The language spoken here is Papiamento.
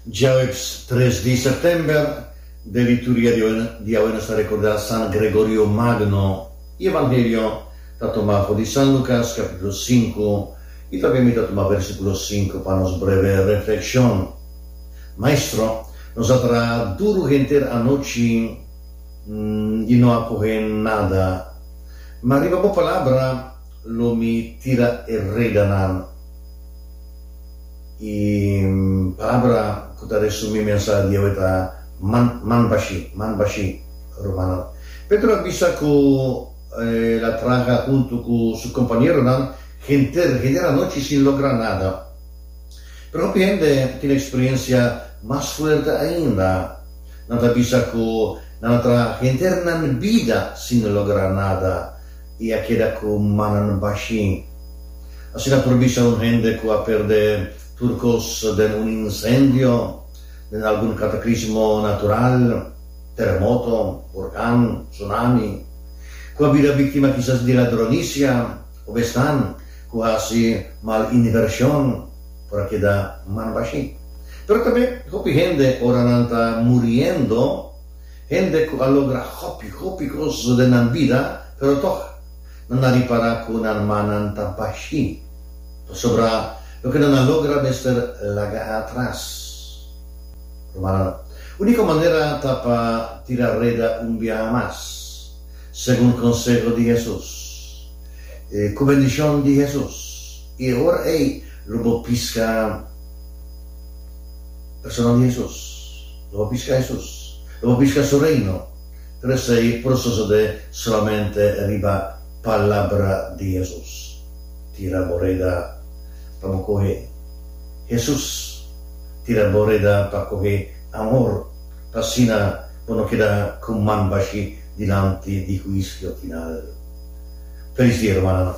Djaweps tres di Sèptèmber, den lituria di awe nos ta rekordá San Gregorio Magno, i Evangelio ta tomá for di San Lukas kapítulo sinku, i tambe mi ta tuma vèrsikulo sinku pa nos breve reflekshon. Maestro, nos a traha duru henter anochi i no a kohe nada, ma riba bo palabra lo mi tira e redanan. E palabra ku ta resumí e mensahe di awe ta man, man bashí, man bashí, rumano. Pedro a bisa ku el a traha huntu ku su kompañeronan henter, henter anochi sin logra nada. Pero hopi hende tin eksperensia mas fuerte ainda. Nan ta bisa ku nan a traha henternan bida sin logra nada. I a keda ku mannan bashi. Asina por bisa un hende ku a perdé tur kos den un insendio, den algun kataklismo natural, teremoto, hurkan, tsunami, ku a bira biktima kisas di ladronisia òf esnan ku hasi mal invershon, por a keda man bashi. Pero tambe hopi hende ora nan ta muriendo. Hende ku a logra hopi, hopi kos den nan bida, pero tok nan a ripará ku nan rmannan ta bashin, pasobra loke nan a logra mester laga atras. Rumannan, úniko manera ta pa tira reda un biaha mas, segun konseho di Hesus. Ku bendishon di Hesus, i e ora ei lo bo piska personanan di Hesus. Lo a biska Hesus. Lo a biska Su Reino. Pero esei por sosode solamente riba palabra di Hesus. Tira bo reda pa bo kohe Hesus. Tira bo reda pa kohe amor, pa asina bo no keda ku man bashi dilanti di huisio final. Felis dia, rumannan.